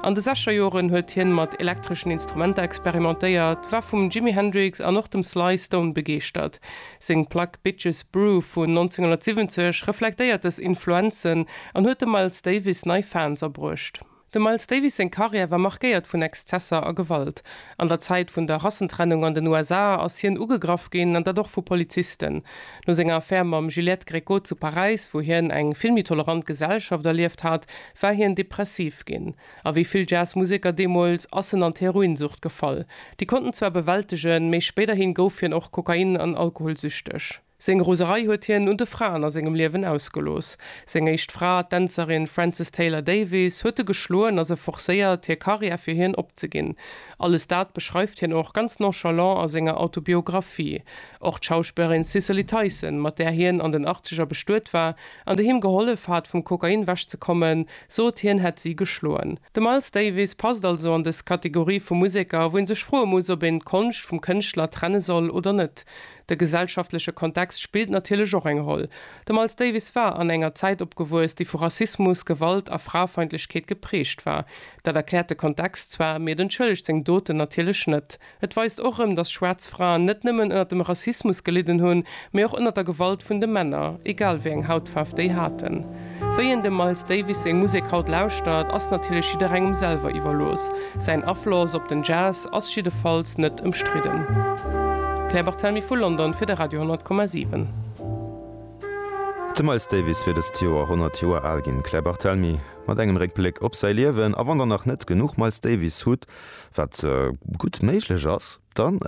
An de sechser Joren huet hien mat elektreschen Instrumenter experimentéiert, war vum Jimi Hendrix an och dem Sly Stone begeeschtert. Seng Plack Bitches Brew vun 1970 reflektéiert dës Influenzen an huet dem Miles Davis nei Fans abruecht. Dem Miles Davis seng Karriär war markéiert vun Exzesser a Gewalt. An der Zäit vun der Rassentrennung an den USA ass hien ugegraff ginn, an dat och vu Polizisten. No senger Affär mam Juliette Gréco zu Paräis, wou hien eng filmintolerant Gesellschaft erlieft hat, war hien depressiv ginn. A wéi vill Jazzmuseker deemools ass en an d'Heroinsucht gefall. Déi konnt en zwar bewältegen, mee spéiderhi gouf hien och kokain an alkoholsüchteg. Seng Roserei huet hien un de Fraen a sengem Liewen ausgelooss. Seng éischt Fra, d'Dänzerin Frances Taylor Davies, huet e geschloen a se forcéiert, hir Karriär fir hien opzeginn. Alles dat beschreift hien och ganz nonchalant a senger Autobiographie. Och d'Schauspillerin Cicely Tyson, mat där hien an den Achtzeger bestuet war an déi him gehollef hat, vum Kokain wech ze kommen, sot hien hätt si geschloen. De Miles Davis passt also an dës Kategorie vu Museker, wou ee sech froe muss, ob een d'Konscht vum Kënschtler trenne soll oder net. De gesellschaftleche Kontext spillt natierlech och eng Roll. De Miles Davis war an enger Zäit opgewuess, déi vu Rassismus, Gewalt a Fraefeindlechkeet geprägt war. Dat erkläert de Kontext zwar, mee et entschëllegt seng Doten natierlech net. Et weist och erëm, dass schwaarz Fraen net nëmmen ënnert dem Rassismus gelidden hunn, mee och ënnert der Gewalt vun de Männer, egal wéi eng Hautfaarf déi haten. Wéi een dem Miles Davis seng Musek haut lauschtert, ass natierlech jidderengem selwer iwwerlooss. Säin Afloss op den Jazz ass jiddefalls net ëmstridden. Claire Barthelmy vu London fir de Radio 10,7. De Miles Davis wier dëst Joer 100 Joer al ginn. D'Claire Barthelmy mat engem Réckbléck op säi Liewen. A wann der nach net genuch Miles Davis hutt, wat gutt méiglech ass, dann.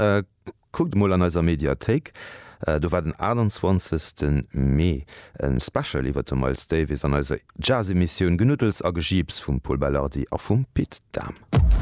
Kuckt emol an eiser Mediathéik, do war den 28 ten Mee en Special iwwert de Miles Davis an eiser Jazz-Emissioun Genuddels a Gejiips vum Pol Belardi a vum Pit Dahm.